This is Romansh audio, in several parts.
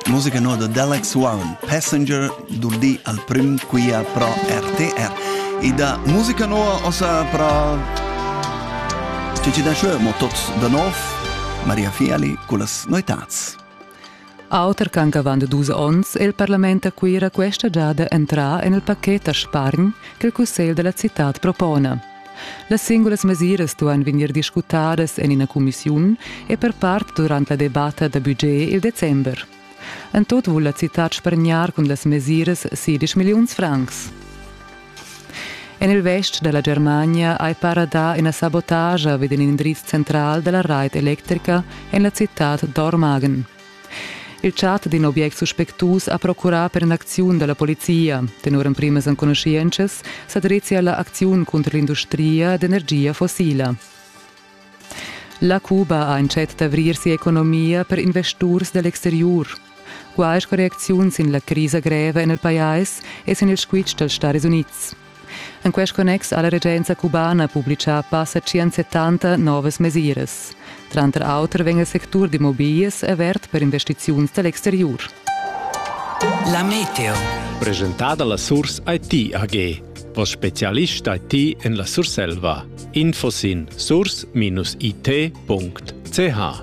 Musica noda d'Alex One, Passenger, durdì al prüm quia pro RTR. E da musica noa ossa pro Cici da Schö, mo tots da nov, Maria Fiali con las noitats. Auter ch'anc avant dus onns è il parlament a Cuira questa giada entrà en il pacchet da spargn che il cussegl della città propone. Las singulas mesiras duan vegnir discutadas en ina cumissiun e per part durant la debatta da budget il december. En tut vul la citad spargnar cun las mesiras 10 milliuns francs. En il vest da la Germania hai para dà ina sabotagia vid in indriz central da la rait electrica en la citad d'Ormagen. Il chat d'in object suspectus ha procurà per in'acziun da la polizia. Tenor emprimas enconuschientschas sa drezia la acziun cunter l'industria d'energia fossila. La Cuba ha entschet d'avrir sia economia per investurs da l'exteriur. Quai sco reacziun sin la crisa greva en il pajais e sin il squitsch dals Staris Unids. En quest connex ha la regenza cubana publitgà passa 170 novas mesiras. Tranter auter vegn il sectur d'immobiglias avert per investiziuns da l'exteriur. La meteo. Presentada la Surs IT AG. Vos specialist IT en la Surselva. Info sin surs-it.ch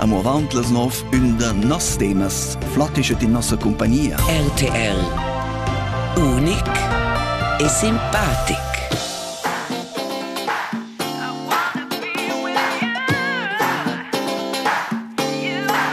Amo avant las nov ün da noss temas flattischa in nossa compagnia. RTL Unic e simpatic.